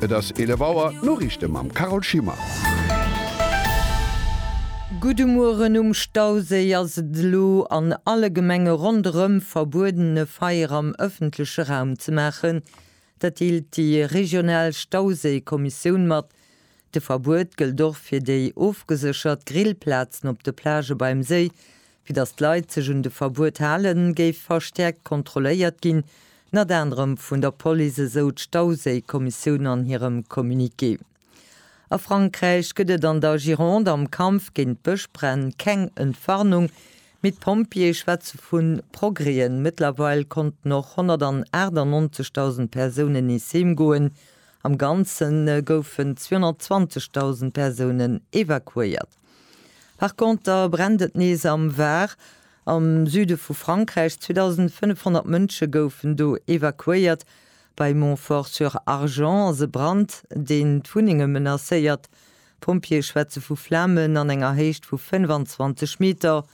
Et ass 11 Auer, d'Noriichte mam Carole Schimmer. Gudde Mueren, Um Stauséi ass et elo an alle Gemenge ronderëm verbueden e Feier am ëffentleche Raum ze maachen. Dat deelt déi regional Stauséikommissioun mat. De Verbuet gëllt och fir déi ofgeséchert Grillplazen op de Plagë beim Séi. Fir datt d'Leit sech un de Verbuet halen, géif verstäerkt kontrolléiert ginn, ënnert anerem vun der Police, esou d'Stauséikommissioun an hirem Communiqué. A Frankräich gëtt et an der Gironde am Kampf géint d'Bëschbränn keng Entwarnung, mee d'Pompjeeë schwätze vu Progrèsen. Mëttlerweil konnten och 198.000 Persounen nees heem goen Am Ganze goufen 220.000 Persounen evakuéiert. Par Conter brennt et nees am Var, am Süde vu Frankräich. 2.500 Mënsche goufen do evakuéiert. Bei Montfort-sur-Argens ass e Brand, deen d'Wunnenge menacéiert. D'Pompjeeë schwätze vu Flamen an enger Héicht vu 25 Meter.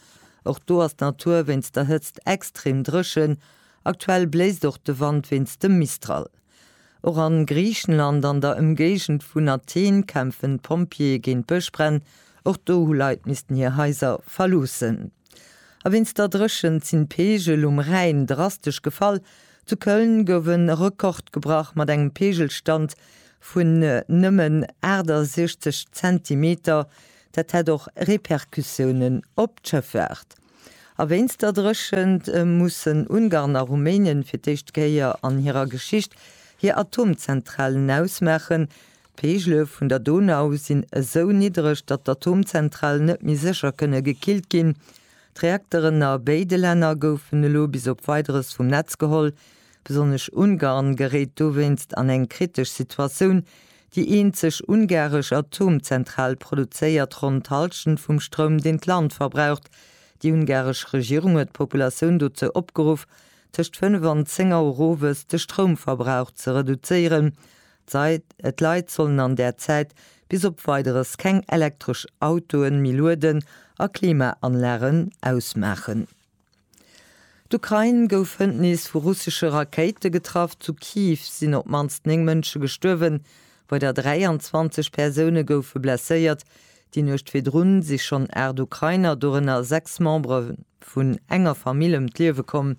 Och do ass d'Natur wéinst der Hëtzt extrem dréchen. Aktuell bléist och de Wand wéinst dem Mistral. Och a Griichenland, an der Ëmgéigend vun Athen, kämpfen d'Pompjeeë géint d'Bëschbränn. Och do hu Leit missten hir Haiser verloossen. A wéinst der Dréchent sinn d'Peegel um Rhäin drastesch gefall. Zu Köln gouf e Rekord gebrach mat engem Peegelstand vun nëmmen 68 Zentimeter. Dat hätt och Repercussiounen op d'Schëffaart. A wéinst der Dréchent mussen Ungarn a Rumänen fir d'éischt Kéier an hirer Geschicht hir Atomzentralen ausmaachen. D'Peegele vun der Donau sinn esou niddreg, datt d'Atomzentralen net méi sécher kënne gekillt ginn. D'Reakteren a béide Länner goufen elo bis op Weideres vum Netz geholl. Besonnesch Ungarn geréit dowéinst an eng kritesch Situatioun, Déi eenzeg ungaresch Atomzentral produzéiert ronn d'Hallschent vum Stroum, deen d'Land verbraucht. Déi ungaresch Regierung huet d'Populatioun dozou opgeruff, tëscht 5 an 10 Auer owes de Stroumverbrauch ze reduzéieren. D'Leit sollen an där Zäit bis op Weideres keng elektresch Autoe méi lueden a Klimaanlagen ausmaachen. D'Ukrain gouf hënt nees vu russesche Rakéite getraff. Zu Kiew sinn op d'mannst 9 Mënsche gestuerwen, weider 23 Persoune goufe blesséiert. Déi Nuecht virdrun si schonn 8 Ukrainer, dorënner 6 Membere vun enger Famill, ëm d'Liewe komm.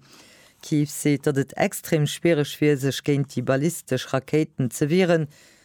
Kiew seet, datt et extrem schwiereg wier, sech géint déi ballistesch Rakéiten ze wieren.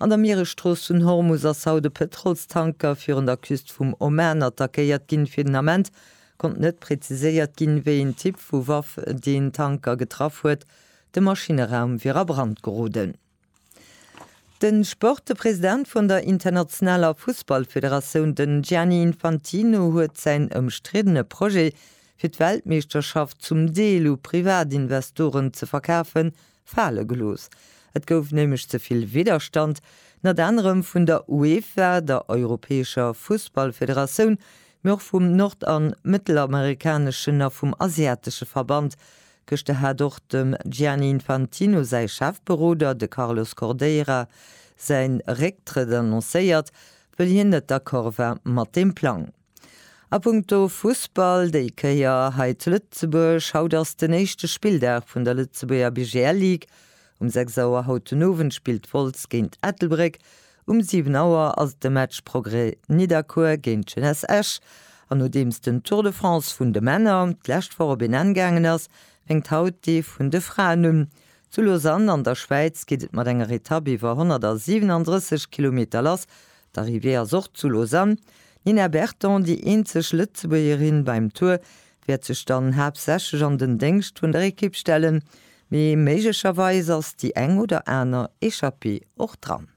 An der Mieresstrooss vun Hormus ass haut e Pëtrolstanker virun der Küst vum Oman attackéiert ginn. Fir den Ament konnt net präziséiert ginn, wéi een Typ vu Waff deen Tanker getraff huet. De Maschineraum wier a Brand geroden. Den Sport, De President vun der internationaler Fussballfederatioun, den Gianni Infantino huet säin ëmstriddene Projet fir d'Weltmeeschterschaft zum Deel u Privatinvestoren ze verkafen fale gelooss. Et gouf nämlech ze vill Widderstand, nat anerem vun der UEFA, der europäescher Fussballfederatioun, mee och vum nord an mëttelamerikaneschen a vum asiatesche Verband. Gëschter hat och dem Gianni Infantino säi Chefberoder, de Carlos Cordeira, säin Récktrëtt annoncéiert, wëll hien net d'accord war mat deem Plang. A punkto Fussball déi Kéier hei zu Lëtzebuerg, Haut ass den éischte Spilldag vun der Lëtzebuerger BGL Ligue. Um 6 Auer haut den Owend spillt Wolz géint Ettelbréck. Um 7 Auer ass de Match Progrès Nidderkuer géint Jeunesse Esch. An nodeems den Tour de France vun de Männer d'lescht Woch op een Enn gaangen ass, fänkt haut dee vun de Fraen un. Zu Lausanne an der Schwäiz geet et mat enger Etapp iwwer 137 Kilometer lass, D'Arrivée ass och zu Lausanne. D'Nina Berton, déi eenzeg Lëtzebuergerin beim Tour, wäert sech dann haaptsächlech an den Déngscht vun der Ekipp stellen, mee méiglecherweis ass déi eng oder aner Echappée och dran.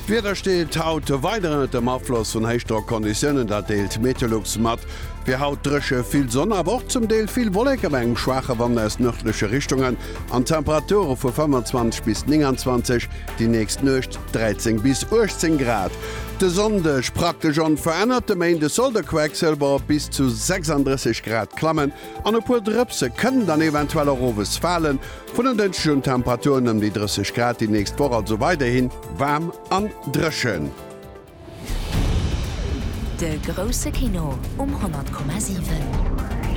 D'Wieder steet haut weider ënnert dem Afloss vun Héichdrockconditiounen, dat deelt Meteolux mat. Fir haut dréche, vill Sonn, awer och zum Deel vill Wolleken, bei engem schwaache Wand aus nërdleche Richtungen. An Temperature vu 25 bis 29, déi nächst Nuecht 13 bis 18 Grad. De Sonndeg praktesch onverännert, de Méinde soll de Quecksilber op bis zu 36 Grad klammen an e puer Drëpse kënnen dann eventuell och owes falen. Vun en Dënschdeg un Temperaturen ëm déi 30 Grad, déi nächst Woch also weiderhin waarm an dréchen. De grousse Kino um 100,7.